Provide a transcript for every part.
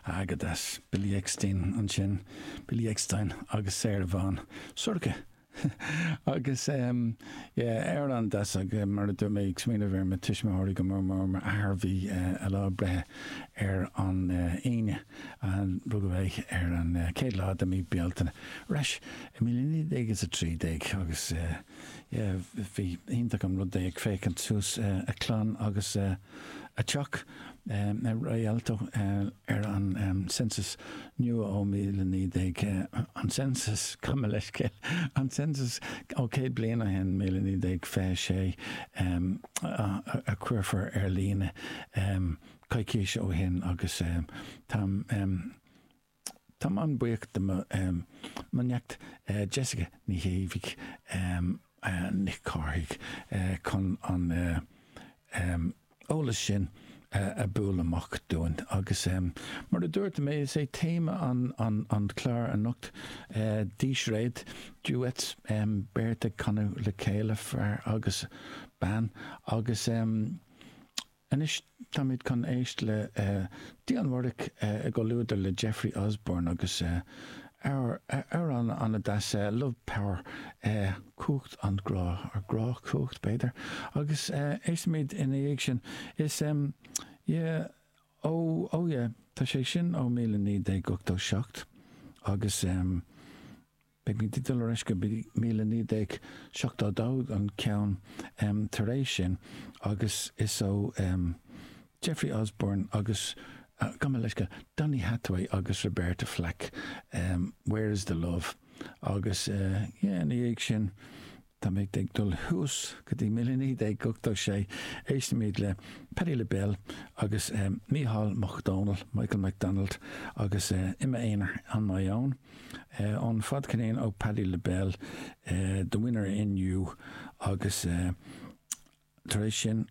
An-deas, Billy Eckstine ansin, Billy Eckstine agus Sarah Vaughan, Sorcha! Agus yeah, an-deas, agus mar a dúirt mé, ag smaoineamh ar mo tuismitheoirí go mór mór, m'athair a bhí a lá breithe ar an Aoine, an rugadh é ar an céad lá de mí Bealtaine, ar ais i 1913, agus. Bhí iontach an rud é ag féachaint suas a clann agus a teach i Rialto ar an Census nua ó 19, an Census, gabh mo leithscéal, an Census ó céad bliain ó shin, 1926, a chuirfear ar líne coicís ó shin agus táim Táim an-buíoch de mo neacht Jessica Ní Chéidigh, Nic Chárthaigh, chun an t-eolas sin a bualadh amach dúinn. Agus mar a dúirt mé, is é téama an clár anocht dísréad, duets, beirt ag canadh le chéile, fear agus bean, agus. Anois táimid chun éist le Dionne Warwick i gcomhluadar le Jeffrey Osborne agus amhrán an-deas, Love Power, Cumhacht an Ghrá, or Grá Cumhacht b'fhéidir, agus éistimid ina dhiaidh sin. Is yeah, oh, oh yeah, tá sé sin ó 1987 agus. Beimid ag dul ar ais go míle naoi déag seachtó dó an ceann tar éis sin agus is ó Jeffrey Osborne agus, gabh mo leithscéal, Donny Hathaway agus Roberta Flack, Where is the Love? agus, yeah, ina dhiaidh sin, Táimid ag dul thuas go dtí míle naoi déag ochtó sé. Éistimid le Patti LaBelle agus Micheál Mac Dónaill, Michael McDonald agus i m'aonar on my own ón fadcheirnín ó Patti LaBelle, The Winner in You agus, Tar éis sin,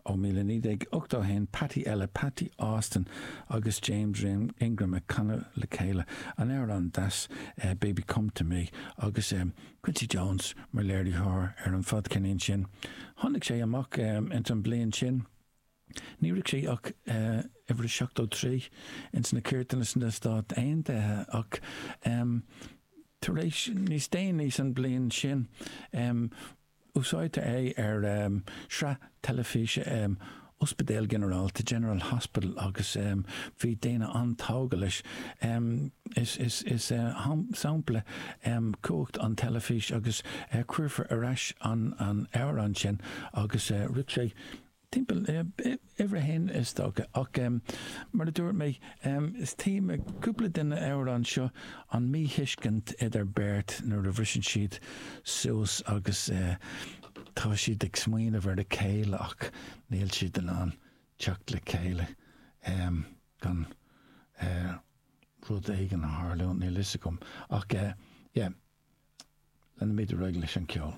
ó 1981, Patti eile, Patti Austin agus James Ingram ag canadh le chéile an amhrán deas Baby Come To Me agus Quincy Jones mar léiritheoir ar an fadcheirnín sin. Tháinig sé amach ins an bhliain sin. Ní raibh sé ach uimhir 73 ins na cairteanna sna Stáit Aontaithe ach tar éis níos déanaí san bhliain sin, Úsáidtear é ar sraith teilifíse Ospidéal Ginearálta, General Hospital, agus bhí daoine an-tógtha leis. Is sampla cumhacht an teilifís agus cuirfear ar ais an amhrán sin agus shroich sé Timpeall uimhir a haon is dócha, ach mar a dúirt mé is téama cúpla de na amhráin seo an míthuiscint idir beirt nuair a bhriseann siad suas agus tá siad ag smaoineamh ar a chéile ach níl siad in ann teacht le chéile gan rud éigin a tharlú, níl a fhios agam ach yeah, leanfaimid ar aghaidh leis an cheol.